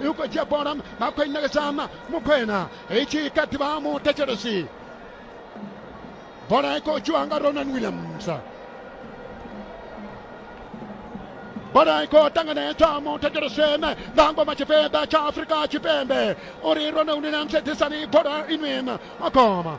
yuko dzhia bola vha khou i ṋekedzana mukhwena i tshi kha ḓivha muthetshelesi bola i khou dzhiwa nga ronan williams bola i khou ṱanganedzwa muthetshelesi ene nga ngoma tshipiḓa tsha afurika tshipembe uri ronan williams ḓisani bola inwi akoma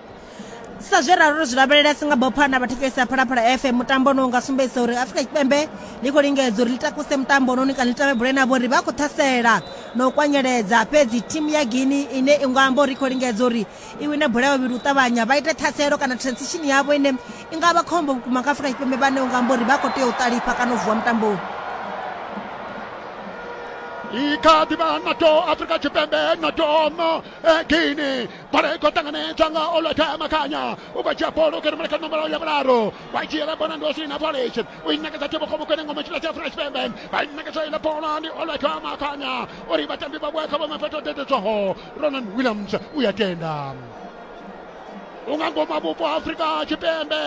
sa zwe ralo ro zwi lavhelela singapore na vhathu fesa phalaphala fm mutambo ono nga sumbedzisa uri afrika tshipembe ḽi khou lingedza uri ḽi takuse mutambo ononi kana ḽi tavhebule navho uri vha khou ṱhasela na u kwanyeledza fhedzi thimu ya guini ine i nga amba uri i khou lingedza uri i wine bola ya vhavhili u ṱavhanya vha ite ṱhaselo kana transition yavho ine i nga vha khombo vhukuma kha afrika tshipembe vhane u nga amba uri vha khou tea u ṱalifha kana u vuwa mutamboni i kha ḓi vha nato afrika tshipembe nato no eh, guini bola i khou ṱanganedzwa nga olota makanya u khou dzhia bola u kha rumela kha nomboro ya vhuraru wa dzhiela bola ndi osina polish u i ṋekedza thibo kho vhukene ngoma tshila tsha afrika tshipembe vha i ṋekedza iḽa bola ndi olota makanya uri vhatambi vha vhuya kha vhome fhethu o dededzwaho ronan williams u ya tenda unga ngoma vhupo afrika tshipembe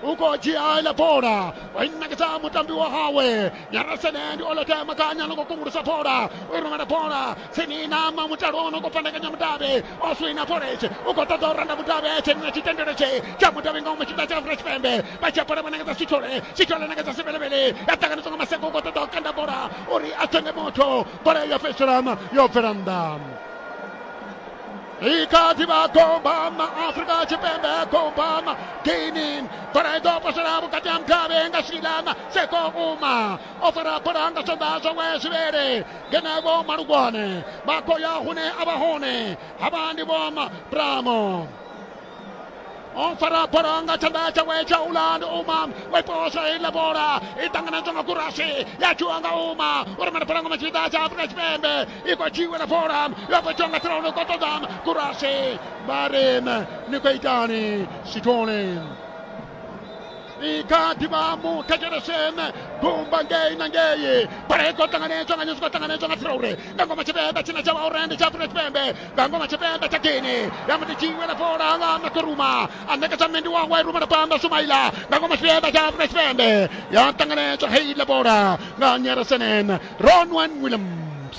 u khou dzhia iḽa bola wa i ṋekedza mutambi wa hawe nyarasene ndi olota makanya no khou kungulusa bola u rumela bola Tsinina ma mutalo ono khou fhandekanya mudavhi o swina pholeche u khou ṱoḓa u randa mudavhi a tshenina tshitendelo tshe tsha mudavhi nga u mashita tsha Afrika Tshipembe vha dzhia bola vha nangedza Sithole Sithole nangedza Sivhelevhele ya ṱanganedzwa nga Maseko u khou ṱoḓa u kanda bola uri a thenge motho bola yo fhedzisela yo bvela nnḓa i kha ḓi vha gombama Afrika Tshipembe gombama Guinea bola i ḓo posela vhukati ha mudavhi nga Swilana Seko Uma o fara bola nga tshanḓa zwa ngwe zwivhele ngenevho malugwane vha khou ya hune a vha hone havha ndi vho bramo on fara bola nga tshanḓa tshawe tsha uland uma waiposa heiḽa bola i ṱanganedzwa nga kurasi ya dzhiwa nga uma u rumela bola ngoma tshipiḓa tsha afurika tshipembe i khou dzhiwela bola yo fhetshiwa nga ṱhirauno ko ṱoḓa kurasi vha ri ni khou itani sithole ikati vha mu thetsheleshen gumba ngei na ngei bola i khou ṱanganedzwa nga nyusi khou ṱanganedzwa nga traure nga ngoma tshivenḓa tshine tsha vha uri ndi tsha afrika tshipembe nga ngoma tshivenḓa tsha gini ya muti tshiwela fola nga makoruma a ṋekedza mmendi wawe rumela phanḓa sumaila nga ngoma tshivenḓa tsha afrika tshipembe ya ṱanganedzwa heiḽa bola nga nyeresenen ronwen williams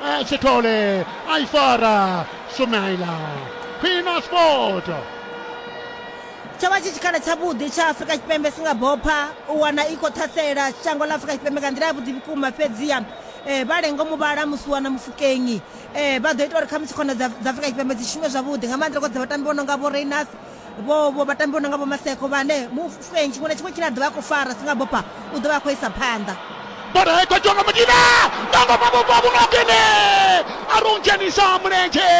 A tu ole, ai fora, Sumaila, Pina Sport. tsho vha tshi tshikhala tshavhuḓi tsha afurika tshipembe si nga bopha u wana i khou ṱhasela shango ḽa afurika tshipembe nga nḓila ya vhuḓi vhukuma fhedziha um vha lengo muvhala musi wana mufukenyi um vha ḓo ita uri khamusi khona dza afurika tshipembe dzi shume zwavhuḓi nga maanḓa ri khou dza vhatambi vho no nga vho rainas vho vho vhatambi vho no nga vho maseko vhane mufenyi tshiṅwe na tshiṅwe tshine a ḓovha a khou fara si nga bopa u ḓovha a khou isa phanḓa bola i khou tonga mudina tonga mabubwa vhunokene a ri u dzhenisa mulenzhe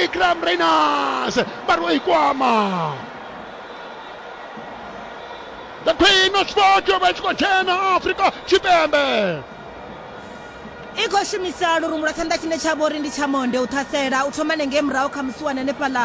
ikram rainas vha ri o i kwama the queen of sport yo vha i tshi khou dzhena afrika tshipembe i khou shumisa lurumbu lwa tshanḓa tshine tsha vho ri ndi tsha monde u ṱhasela u thoma nengei murahu kha musiwane hanefhaḽa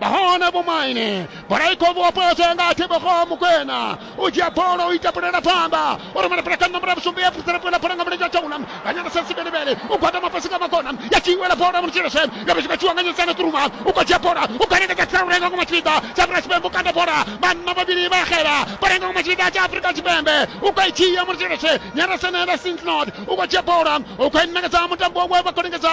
nahone vhomaine bola i khou vuwa poso yanga a thivhogo mukwena u dzhia bola u ita pulela pfamba u rumela pula kha nomboro ya vhusumbi ya frisela pulela bola nga mulenzhe wa tshaula nga nyana sa sibelebele u gwadama fhasi nga makona ya tshiwela bola mulutshilese nga vhashika tshiwa nga nyisana kuruma u khou dzhia bola u khwanekedza tsiraulenga ngo matshipida tsha afurika tshipembe u kanda bola vhanna vhavhili vha xela bola nga ngo matshipida tsha afurika tshipembe u khou i dzhia mulutshilese nyana senela sintnod u khou dzhia bola u khou i ṋekedza mutambo wawe vha khou lingedza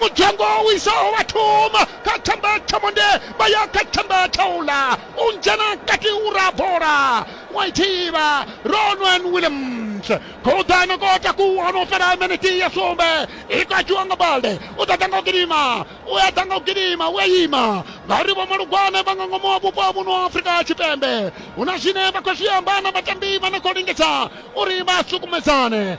mudzhango u isaho vhathoma kha themba tsha monde vha ya kha themba tsha ula u dzhena kati u ra bola wa ithivha ronwen williams khoḓano ko takuwa no fhela miniti ya sumbe i katshiwa nga balde u ḓaḓa nga u gidima u ya ḓa nga u gidima u ya ima ngauri vho malugwane vha nga ngomu wa vhupo ha muno wa afrika tshipembe hu na zwine vha khou zwi amba na vhatambi vha no khou lingedza uri vha sukumedzane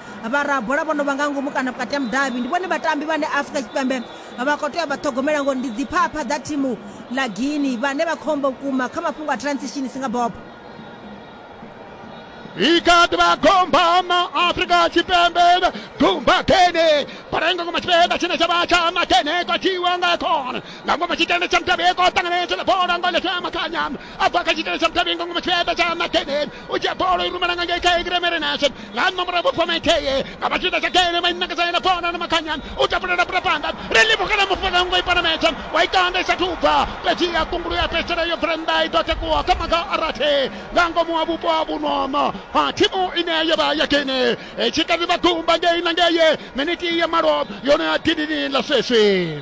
Vharabola vho no vha nga ngomu kana vhukati ha mudavhi ndi vhone vhatambi vhane Afrika Tshipembe vha khou tea u vha ṱhogomela ngori ndi dziphapha dza thimu ḽa Guinea vhane vha khombo vhukuma kha mafhungo a transition si nga bobo. Ikati vha gombana Afrika Tshipembe gumba gene parengo ngoma tshipenda tshine tsha vha tsha makene kwa tiwa nga khona nga ngoma tshikene tsha mutavheko ṱanganedza na bola ngole fya makanya abva kha tshitelo tsha muthavhingo ngomu tshienda tsha makedeni u dzhia bolo i rumela nga ngei kha egremere nashe nga nṋa murahu vhupfa maitheye nga vha tshienda tsha kene mainakazayela kona na makhanyani u tapulela pula phanḓa ri livhukela mufana ngo i panametsha wa itanda i sathu bva fhedzi ya kungulu ya fhedzisela yo bvela nnḓa i ḓo takuwa kha maga a rathe nga ngomu ha vhupo ha vhunono ha thimu ine yo vha ya kene tshi kati vha gumba ngei na ngeye miniti ya malo yone ya dinini ḽa sweswi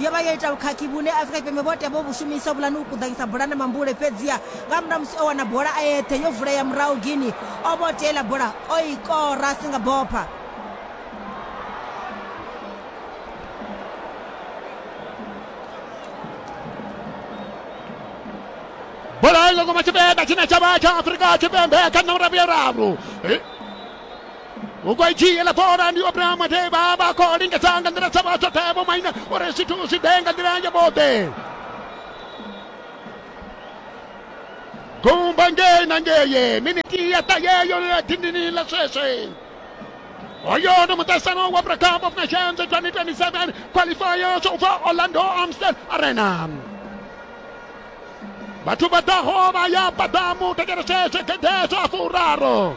yo vha yo ita vhukhakhi vhune Afrika Tshipembe vhoṱhe vho vhu shumisa vhulani u kuḓanyisa bola na mambule fhedziha nga murahu musi o wana bola a eṱhe yo vulea murahu Guinea o vho tea iḽa bola o i kora a si nga bopha bola yo guma tshipiḓa tshine tsha vha tsha Afrika Tshipembe kha nomoro ya vhuraru u khou i dzhia ḽa bola ndi obraham mateba vha khou lingedza nga nḓila dza vha tshoṱhe vho maina uri zwithu zwi ḓe nga nḓila ya vhoṱhe gumba ngei na ngeye miniti ya ṱayeyo ya dindini ḽa sweswe hoyo ndi muṱahisano wa africa cup of nations 2027 qualifiers ubva orlando amstel arena vhathu vha ḓaho vha ya paḓamu tekeresese gedeso a furaru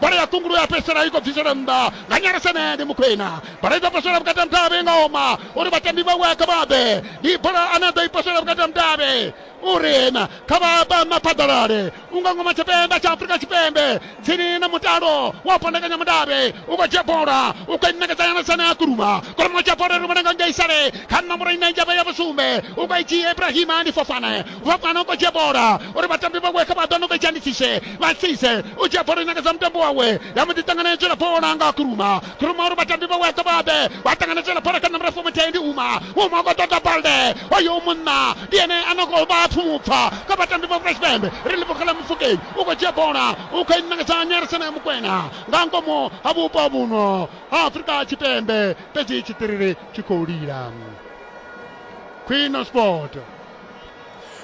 bola ya kungulu ya fhedzisela i khou bvisela nnḓa nga nyalesene ndi mukhwena bola i ḓo posela vhukati ha mudavhi nga oma uri vhatambi vhawe kha vha bve ndi bola ane a ḓo i posela vhukati ha mudavhi uri na kha vha bva maphaḓalale unga ngoma tshipembe tsha afurika tshipembe tsini na mutalo wa fondekanya mudavhi u khou dzhia bola u khou inekedza nyalesene ya kuruma kuruma tsha bola ri vhona nga ngei sale kha nomboro ine njavha ya vhusumbe u khou i dzhia ibrahima ndi fofane vha fana u dzhia bola uri vhatambi vhawe kha vha ḓo no vha dzhanisixe vha tsise u dzhia bola nyaka dza mutambo wawe ya mbo ḓi ṱangana ya dzhela bola nga khuruma khuruma uri vhatambi vhawe ḓo vha ḓe vha ṱangana dzhela bola kha nambara fomuthe ndi uma uma khou ṱoḓa balde oyo munna ndi ene a no khou vha pfumupfa kha vhatambi vha fresh bambe ri ḽivhokhala mufukei u khou dzhia bola u khou inakadza nyarisana ya mukwena nga ngomu ha vhupo vhuno ha afrika tshipembe fhedzi tshiṱiriri tshi khou lila khwino sport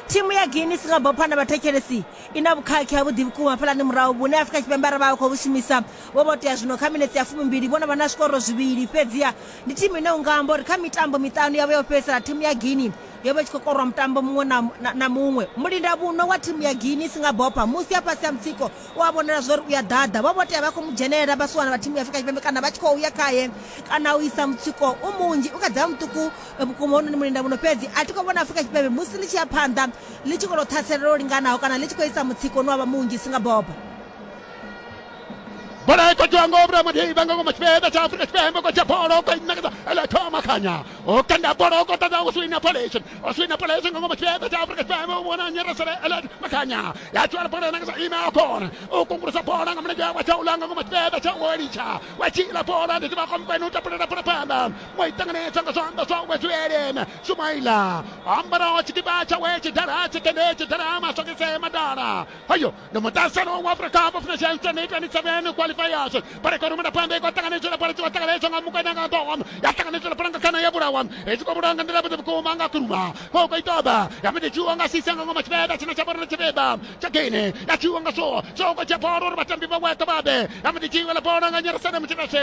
thimu ya guinness nga bopha na vhathetshelesi i na vhukhakhi ha vhuḓi vhukuma hafhalani murahu vhune afrika tshipembe ara vha khou vhu shumisa vho vho tea zwino kha minetse ya fumimbili vho no vha na zwikoro zwivhili fhedziha ndi thimu ine u nga amba uri kha mitambo miṱanu yavho yo fhedzisela thimu ya guinea yo vha tshi khou korwa mutambo muṅwe na, na, na muṅwe mulinda vhuno wa thimu ya guinness nga bopha musi ya fhasi ya mutsiko u a vhonela zwa uri u ya ḓaḓa vho vho tea vha khou mu dzhenelela vhasiwana vha thimu ya afrika tshipembe kana vha tshi khou ya khaye kana u isa mutsiko u munzhi u kha dza muṱuku E, vhukuma hononi mulinda muno fhedzi a thi khou vhona afurika tshipembe musi ḽi tshi ya phanḓa ḽi tshi kona u ṱhaselela lwo linganaho kana ḽi tshi khou isa mutsiko une wa vha munzhi si nga bobo bola ikotiwa ngo vhura madiba nga ngoma tshipembe tsha afurika tshipembe ko tsha bola ko inakadza ele thoma khanya o kanda bola o kotadza o swina polation o swina polation nga ngoma tshipembe tsha afurika tshipembe o vhona nyeresele ele makhanya ya tswala bola inakadza ime a kona o kungulusa bola nga mulenzhe wa tsha ulanga ngoma tshipembe tsha o litsha wa tshila bola ndi tivha komkwene u tapulela bola phanḓa waitanganedza nga zwanḓa zwawe zwi eleme sumaila ambaraho tshikipa tshawe tshidala tshikende tshidala masokise madala ayo ndi muṱasano wa afrika cup of nations 2027 qualifiers pareko rumela phanḓa i khou ṱanganedzela phala tshi khou ṱanganedzwa nga mukanya nga ḓoho ya ṱanganedzela phala nga khana ya vhulawa i tshi khou vhulawa nga nḓila vhuḓi vhukuma nga khuruma khou khou itoba ya mbe tshiwa nga sisa nga ngoma tshibeba tshina tsha vhorona tshibeba tsha gene ya tshiwa nga so so khou tsha bolo uri vhatambi vha weṱa vhabe ya mbe tshiwa la bola nga nyarasana mutshikashe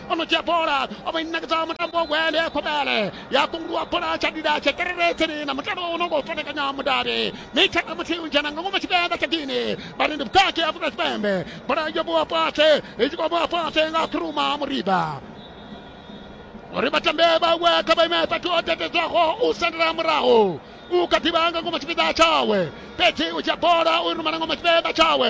onodzhia bola o vha i ṋekedza mutambo wa gwele khobele ya kunguluwa bola tsha dida tshe kereretseni na mutambo wo no ngo fanekanya mudavhi mitsha na muthihi u dzhena nga ngomu tshivenḓa tsha gini vharendi vhukati afrika tshipembe bola yo vhuwa fhasi i tshi khou vhuwa fhasi nga khuruma muriba uri vhatambe vhawe kha vha ime fhethu ho tetedzwaho u sendela murahu u kha ḓivha nga ngomu tshipiḓa tshawe fhedzi u dzhia bola u rumela ngomu tshipiḓa tshawe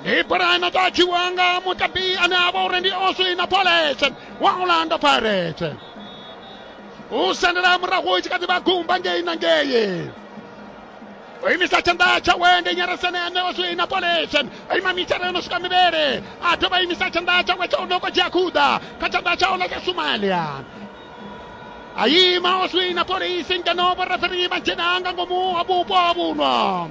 ndi bola inatachiwa nga mutambi ane ava uri ndi oswina polese wa orlando pirates u sendela murahu u tshi kha ḓi vha gumba ngei na ngei o imisa tshanḓa tshawe ndi nyaresene ane oswina polese o ima mitshara yo no swika mivhele a dovha a imisa tshanḓa tshawe tsha u no kho dzhia khuḓa kha tshanḓa tsha ola tsha somalia a ima oswina polisi ngeno vhoreferi vha dzhena nga ngomu ha vhupo ha vhuno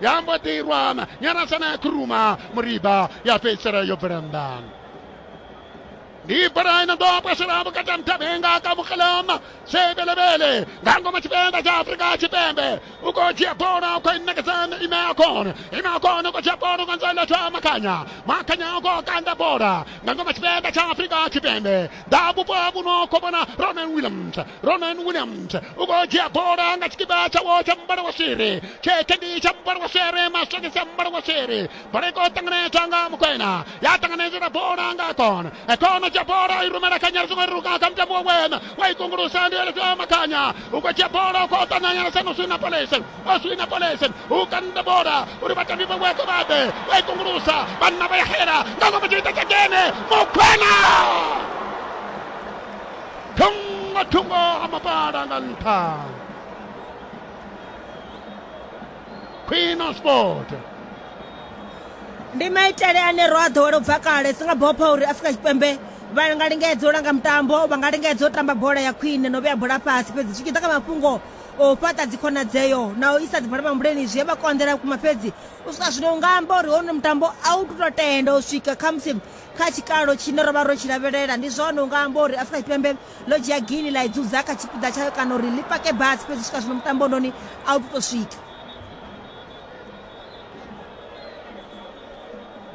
yambo ḓi irwa nyarasana ya khuruma muriba ya fhedzisela yo bvela nnḓa ndi bola ino ḓo pwasela vhukati ha muthavhenga ka mukalama sebelebele nga ngoma tshipenda tsha afurika tshipembe u khou dzhia bola u khou inekedzana ime ya kona ime ya kona u khou dzhia bola nga nzela tsha makhanya makhanya u khou kanda bola nga ngoma tshipenda tsha afurika tshipembe ḓa vhupo ha vhuno khou vhona ronan williams Ronan Williams u khou dzhia bola nga tshikipa tshawo tsha muvhala wa swiri tshetshe ndi tsha muvhala wa swiri masokisi a muvhala wa swiri bola i khou ṱanganedzwa nga mukwena ya ṱanganedzela bola nga kona ekona dzhia bola i rumela khanya ri songo ruka kha mutambo wa wena wa i kungulusa ndi eletswa makhanya u khou dzhia bola u khou ṱananyana sano swina polese o swina polese u kanda bola uri vhatambi vha weke vha ḓe wa i kungulusa vhanna vha ya xela nga ngomu tshiita tsha kene mukwena thungo thungo ha mapala nga nṱha khwino sport ndi maitele ane ro a ḓowela u bva kale si nga bopha uri afurika tshipembe vha nga lingedza u langa mutambo vha nga lingedza u tamba bola ya khwine no vhea bola fhasi fhedzi zwi tshi ḓa kha mafhungo o fhaṱa dzikhonadzeo na u isa dzibala mambuleni zwi vha konḓela vhukuma fhedzi u swika zwino u nga amba uri hono mutambo a u tu to tenda u swika khamusi kha tshikalo tshine ro vha ro tshi lavhelela ndi zwone u nga amba uri afrika tshipembe ḽo dzhia gili ḽa i dzudza kha tshipiḓa tshayo kana uri ḽi pake basi fhedzi swika zwino mutambo noni a u tou swika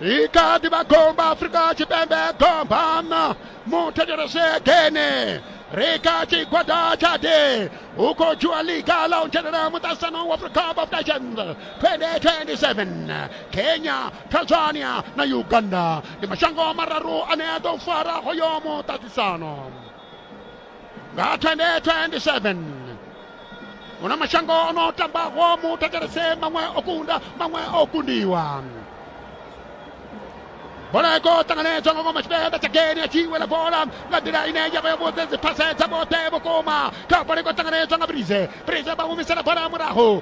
ikati bagomba afrika tshipembe gombana muthetshelese gene rika tshigwada tshade hu khou dzhiwa liga ḽa u dzhenela muṱaṱisano wa africa cup of nations 2027 kenya tanzania na uganda ndi mashango mararu ane a ḓo fara hoyo muṱaṱisano nga 2027 una mashango o no tambaho mu thetshelese maṅwe o kunda maṅwe o kundiwa bola iko ṱanganedzwa nga ngoma tshipembe tsha geni ya tshiwela bola nga nḓila ine ya vha ya vhudze dziphase dza vhoṱhe vhukuma kha bola iko ṱanganedzwa nga brize brize vha humisela bola murahu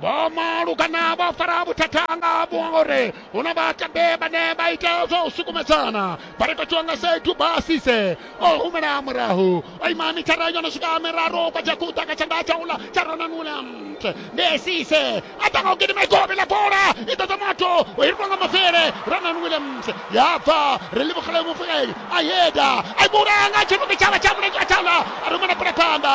vho malukana vho fara vhuthata nga vhore hu na vhatambe vhane vha ita zwa u sukumedzana vha ri katiwa nga sedu basise o humela murahu o ima mithara yo no swika miraru kwa jakuta ka tshanḓa tsha uḽa tsha ronanula ndi sise a ṱanga u gidima igobe la bola i ḓoḓa moto o hirwa nga mavele ronan williams ya bva ri livhogele mufuleli a yeda a i vhulanga tshinuke tshavha tsha mulenzhe a thala a rumela bola phanḓa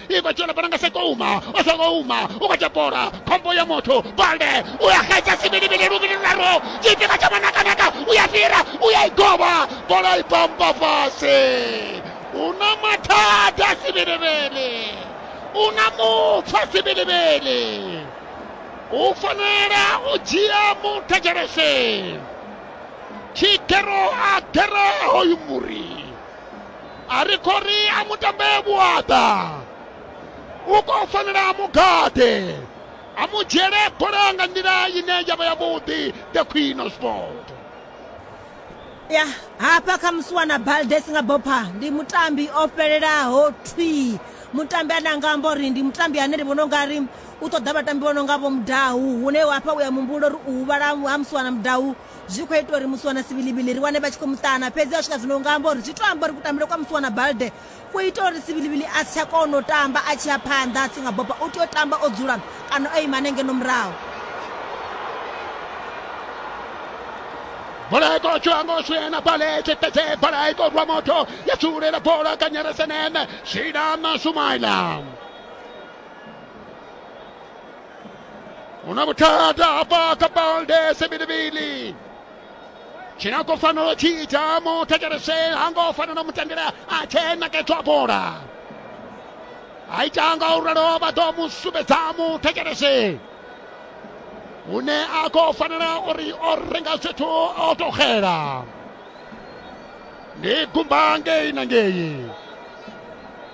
i khou tshila vhananga sekouma o sekouma u khou tshepora khombo ya motho balde u ya xedza sivilivili luvili luraru tshifhinga tsha manakanaka u ya fhira u ya i govha bola i pamba fhasi u na mathada sivilivili u na mupfa sivilivili u fanela u dzhia muthetshelesi tshigero a gera hoyu muri a ri khou ri a mu tambee vhuaḓa u khou fanela a mu gaḓe a mu dzhiele bola nga nḓila ine ya vha yavhuḓi the queen of sport ya hafha kha musiwana baldes nga bopha ndi mutambi o fhelelaho thwii mutambi ane anga amba uri ndi mutambi ane ndi vhona u nga ri u ṱoḓa vhatambi vho no nga vho mudahu hune hafha u ya muhumbulo uri u huvhala ha musiwana mudahu zwi khou ita uri musiwana sivilivili ri wane vha tshi khou muṱana fhedzi a swika zwino nga amba uri zwi to amba uri kutambele kwa musiwana balde ku ita uri sivilivili a si tsha kona u tamba a tshi ya phanḓa a si nga boba u tea u tamba o dzula kana o ima hanengeno murahu bola ya kotsho ya ngo swena pale tsheketse bola ya korwa motho ya tsulela bola ka nyeresenene swina na sumaila una vhuthada hafha kha baldes bilibili tshine a khou fanela u tshi ita muthetshelese ha ngo fanela u mu tendela a tshe nakedzwa bola a ita nga u ralo vha ḓo mu sumbedza muthetshelese hune a khou fanela uri o renga zwithu o tou xela ndi gumba ngei na ngei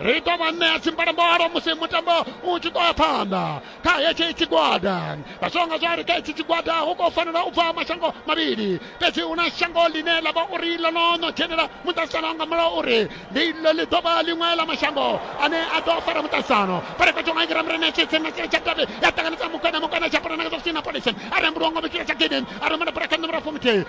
ri ḓo vha ṋea dzimbalombalo musi mutambo u tshi ḓo ya phanḓa kha hetshi tshigwada vha zwo nga zwa ri kha hetshi tshigwada hu khou fanela u bva mashango mavhili fhedzi hu na shango ḽine ḽa vha uri ḽo no no dzhenela muṱaṱisano nga mulayo uri ndi ḽo ḽi ḓo vha ḽiṅwe ḽa mashango ane a ḓo fara muṱaṱisano fara fhethu nga ngira murena tshitsi na tsira tsha davhi ya ṱanganedza mukwena mukwena tsha pulana nga zwa sina polisi a rembuluwa ngo vhitshila tsha gidin a rumela bulakha numero fumuthihi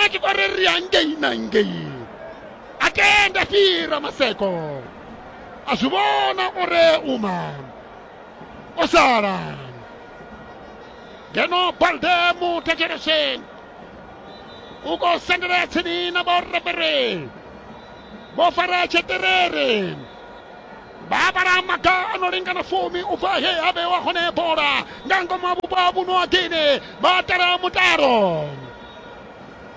a tshi khou ri ri hangei na ngei a tenda fhira maseko a zwi vhona uri uma o sala ngeno balde mu thetsheleseni u khou sendelela tsini na vhorabere vho fara tsheṱerere vha vhala maga a no lingana fumi u bva he a vhewa hone bola nga ngomu ha vhupo ha vhuno ha gini vha tala mutalo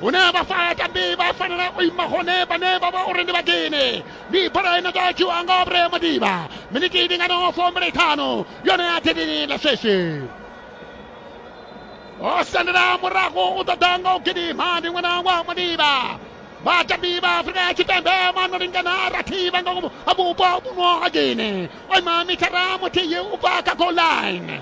hune vha fa tambi vha fanela u ima hone vhane vha vha uri ndi vhagene ndi bola ine ḓo dzhiwa nga obre madiba miniti ndi ngano fombele ṱhanu yone ya thedini ḽa sweswi o sendela murago u ṱoḓa nga u gidima ndi ṅwana wa madiba vhatambi vha afrika ya tshipembe vhano lingana rathi vha nga ngomu ha vhupo vhuno ha gene o ima mithara muthihi u bva kha goal line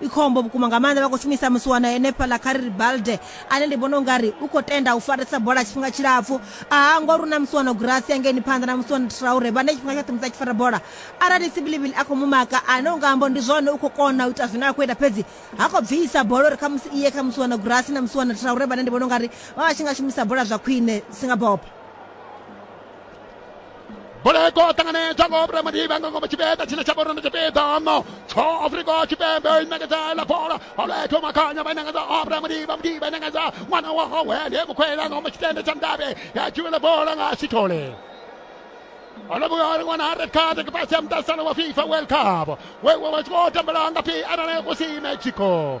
i khombo vhukuma nga maanḓa vha khou shumisa musiwana henefhaḽa kha ri ri balde ane ndi vhona ungari u khou tenda u farisa bola tshifhinga tshilapfu aha ngori u na musiwana gurasi yangeni phanḓa na musiwana traure vhane tshifhinga tshoṱhe musi a tshi fara bola arali sibilivili a khou mu maka ane u nga ambo ndi zwone u khou kona u ita zwine a khou ita fhedzi ha khou bvisa bola uri khamusi iye kha musiwana gurasi na musiwana traure vhane ndi vhona ungari vha vha tshi nga shumisa bola zwa khwine singabopa boleko ṱanganedzwa ngo vhura madiba nga ngomu tshipiḓa tshine tsha vhorona tshipiḓa no tsho afrika tshipembe i ṋekedza la bola oletho makhanya vha ṋekedza obra madiba madiba ṋekedza ṅwana wa howe ndi mukhwela ngomu tshitende tsha mdavhe ya dzhiwela bola nga sithole olobugha uri wana ha red card kipasi ya mutasano wa fifa world cup wewe wachikotambelanga phi arale kusime chiko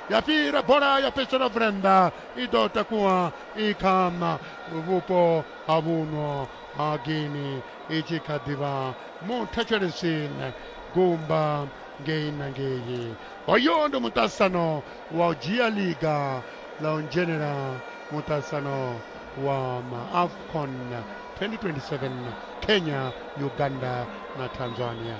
ya fhira bola ya fhedzisela vrenda i ḓo takuwa i kha vhupo ha vhuno ha gini i tshi kha ḓivha muthetshelesi gumba ngei na ngei hoyo ndi muṱasano wa u dzhia liga ḽa u dzhenela muṱasano wa maafcon 2027 kenya uganda na tanzania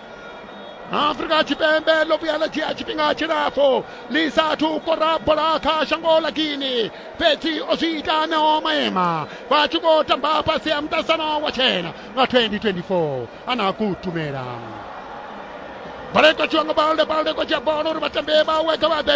afrika tshipembe ḽo vhuya ḽa dzhia tshifhinga tshilapfhu ḽi sathu kora bola kha shango ḽa guini fhedzi o zwi ita neo maema vha tshi khou tamba fhasi ha muṱasano wa tshena nga 2024 ana kutumela baleka tshiwa nga balde balde ko dzhia bola uri vhatambi vhawe kha vha ḓe